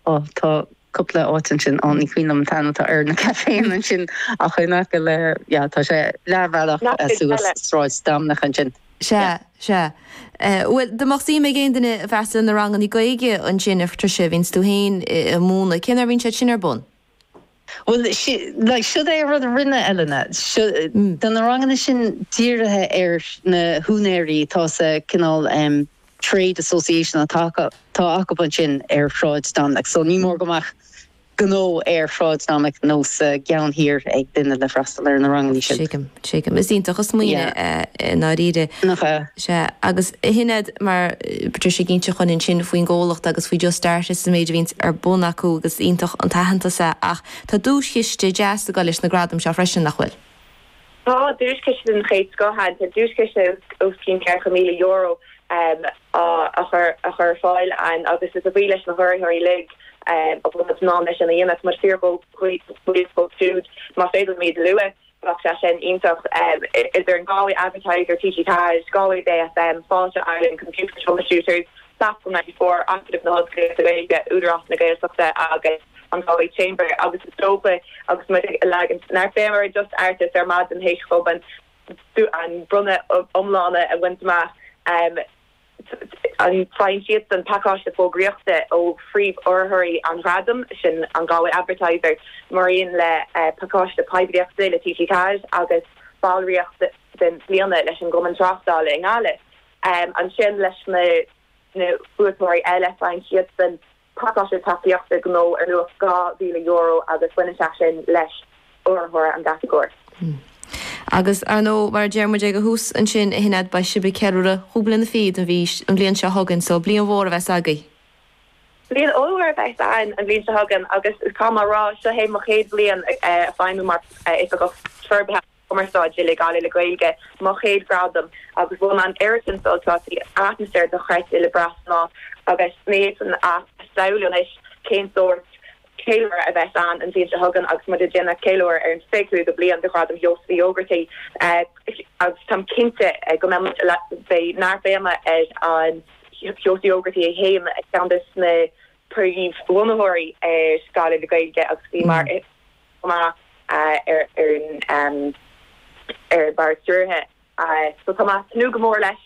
Ó, tá cúpla áit ansin, á, ní cuimhin liom an t-ainm atá ar na caiféanna ansin ach in aice le, yeah, tá sé leathbhealach suas Sráid Dominic ansin. Sea, sea. Bhuel, dá mbeadh suim ag aon duine freastal ar na ranganna Gaeilge ansin, a Patricia, bhíonns tú féin a' múineadh, cén uair a bhíonns siad sin ar bun? Bhuel, like, siod é an rud a rinne Elena. Tá na ranganna sin dírithe ar na húinéirí atá sa cineál trade association atá acub ansin ar Shráid Dominic, so ní mór go mbeadh gnó ar Shráid Dominic nó sa gceann thiar ag duine le freastal ar na rangannaí sin. Tuigim. Is iontach an smaoineamh é i ndáiríre. Sea, agus shin iad mar Patricia ag inse dhom ansin faoin gcomhlacht agus faoi Just Art It is an méid a bhíonns ar bun acu agus is iontach an t-aitheantas é ach tá duaischiste deas ag dul leis na gradaim seo freisin, nach bhfuil? Tá, duaischiste den chéad scoth ann. Tá duaischiste os cionn ceithre míle euro á chur ar fáil ann agus is a bhuí leis na hurraitheoirí uilig a bhfuil muid in ann é sin a dhéanamh. Tá muid fíor bhuíoch dóibh siúd. Más féidir liom iad a lua. Bheadh sé sin iontach. Idir an Galway Advertiser, TG4, Galway Bay FM, Fáilte Ireland, Computer Troubleshooters, Platform ninety four, Acadamh na hOllscolaíochta Gaeilge, Údarás na Gaeltachta agus an Galway Chamber agus is dócha agus muid ag leagaint neart béime ar Just Art It ar maidin th'éis dóibh an bronnadh iomlán a bhaint amach. faigheann siadsan pacáiste fógraíochta ó phríomhurraitheoirí an Ghradaim, sin an Galway Advertiser, maraon le pacáiste poiblíochta le TG4 agus ballraíocht den bliana leis an gCumann Tráchtála i nGaillimh, ansin leis na buaiteoirí eile, faigheann siadsan. pacáiste tacaíochta gnó ar luach €2,000 agus baineann sé sin leis urraitheoir an gcatagóir. Agus, ar ndóigh, mar a deir muid ag a thús ansin, a Shinéad, beidh sibh ag ceiliúradh cúig bliana fichead an mhí, an bhliain seo chugainn, so bliain mhór a bheas agaibh! Bliain ollmhór a bheas ann an bhliain seo chugainn agus caithfidh mé a rá, seo é mo chéad bhliain ag feidhmiú mar Oifigeach Forbartha. Cumarsáide le Gaillimh le Gaeilge, mo chéad ghradam agus bhain mé an oiread sin sult as, bhí atmaisféar dochreidte le brath san áit agus ní fhéadfainn a shamhlú anois cén sórt ceiliúradh a bheas ann an bhliain seo chugainn agus muid ag déanamh ceiliúradh ar an fiche cúigiú bliain de Ghradam Sheosaimh Uí Ógartaigh agus táim cinnte go mbeidh muid beidh neart béime ar an Sheosaimh Uí Ógartaigh é féin, ceann de na príomh bhunaitheoirí ar Ghaillimh le Gaeilge agus bhí mar. maith ar an mbord stiúrtha. Táim ag tnúth go mór leis.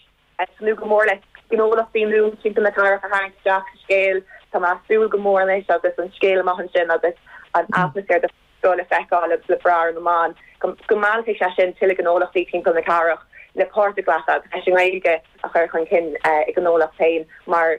Tnúth go mór le gnólachtaí nua timpeall na cathrach a tharraingt isteach sa scéal. Tá mé ag súil go mór anois agus an scéal amach ansin agus an atmaisféar den scoth le feiceáil agus le brath ar na meáin, go meallfaidh sé sin tuilleadh gnólachtaí timpeall na cathrach le páirt a ghlacadh agus leis an nGaeilge a chur chun cinn ina ngnólacht féin mar.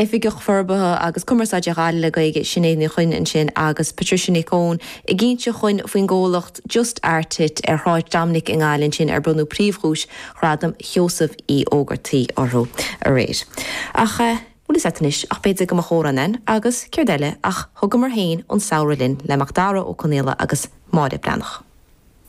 Oifigeach Forbartha agus Cumarsáide Ghaillimh le Gaeilge, Sinéad Ní Chuinn ansin agus Patricia Nic Eoin ag inse dhúinn faoin gcomhlacht Just Art It ar Shráid Dominic i nGaillimh ansin ar bronnadh príomhdhuais Ghradam Sheosaimh Uí Ógartaigh orthu aréir. Ach eh. bhuel, is ait anois ach b'fhéidir go mba chóir amhrán agus céard eile ach thugamar féin an samhradh linn le Macdara Ó Conaola agus Máire Breathnach.